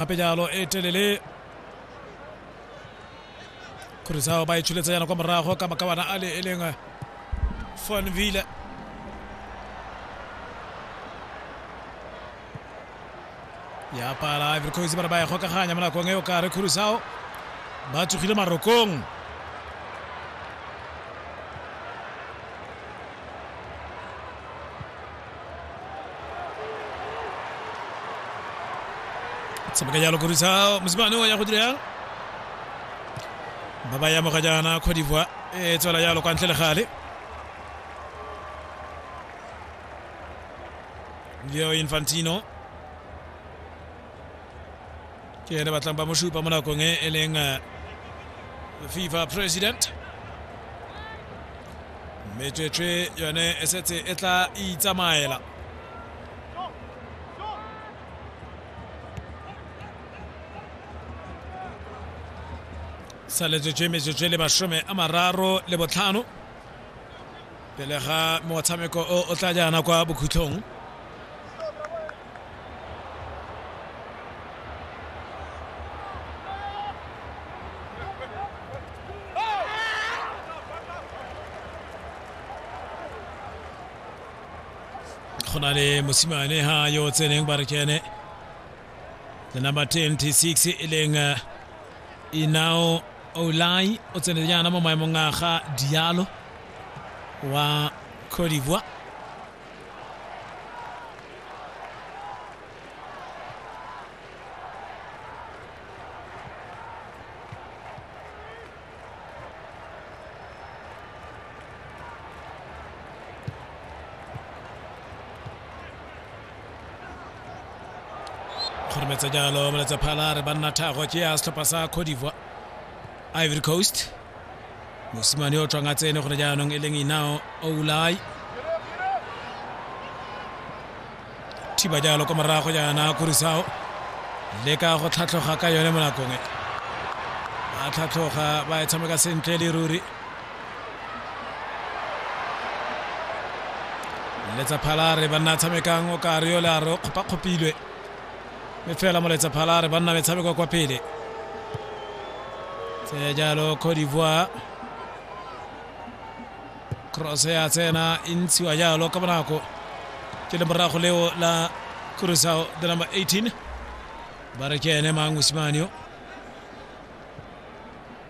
gape jalo e telele khurisao ba e tsholetsa yana kwa morago ka makawana a le e leng fonville ya pala ivory coast ba re ba e gokaganya mo nakong e o kare khurisao ba tsogile marokong tshameka jalo korisa mosimane o ya go dira ba ba yamoga jaana cote divoire e tswela jalo kwa ntle le gale yo infantino ke ene batlang ba mo supa mo nakong e e leng eh, fifa president metswetswe yone e setse e tla itsamaela saletsetswe metswetswe le masome a mararo le botlhano pele ga motshameko o o tla jaana kwa bokhutlhong go na le mosimane ha yo o tseneng ba re ke ene the number 26 e leng uh, inao olai o tsene jaana mo maemong a ga dialo wa cote d'ivoire kgorometse jalo moletsa phala re banna thago ke ya setlhopha sa codivoa ivory coast mosimane o tlwang a tsene gone jaanong e leng inao oulai thiba jalo kwa morago jaana kurisao leka go tlhatlhoga ka yone mo nakong e ba tlhatlhoga ba e tshameka sentle le ruri letsa phalare banna tshamekang o ka re yola re kgopa kgopilwe me fela moletsa phalare banna metshameko kwa pele tse jalo cote d'ivoire cross ya tsena e ntshiwa jalo ka bonako ke le morago leo la kurusao the number 18 ba re ke ene mang mosimane yo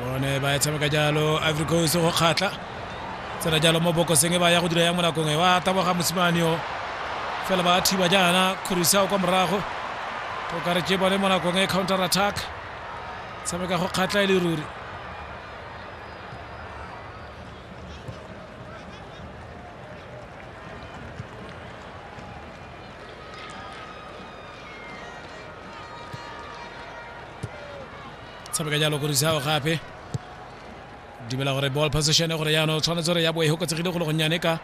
bone ba e tshameka jalo ivory coast go kgatlha tsena jalo mo bokoseng e ba ya go dira yang mo nakong e wa taboga mosimane o fela ba thiba jaana khurisao kwa morago o kare ke bone mo nakong e counter attack tshameka go kgatlha e le ruri tshameka jalo go risago gape dumela gore ball position gore yana o tshwanetse gore ya bo e hokotsegile go le gonnyane ka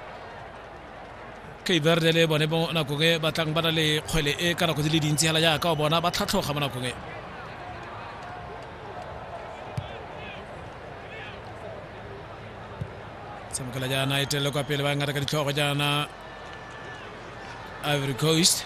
kaverde le bone mo nakong e batlang ba na le kgwele e ka nako di le dintsi fela jaaka o bona ba tlhatlhoga mo nakong e tshamekela jaana e telele kwa pele ba ngata ka ditlhogo jaana ivory coast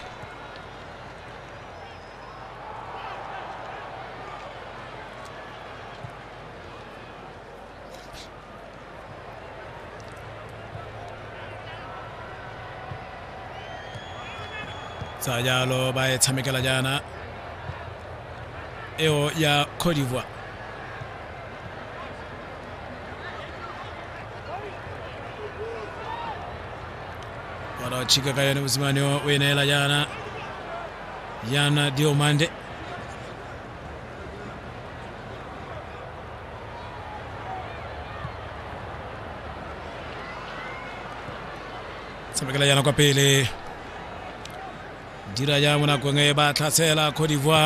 tsa jalo ba e tshamekela jaana eo ya cote d'ivoire wanaochika kayani msimani wa wenela jana jana diomande tshamekela jana kwa pele dira jang mo nakong e ba tlhasela cote d'ivoire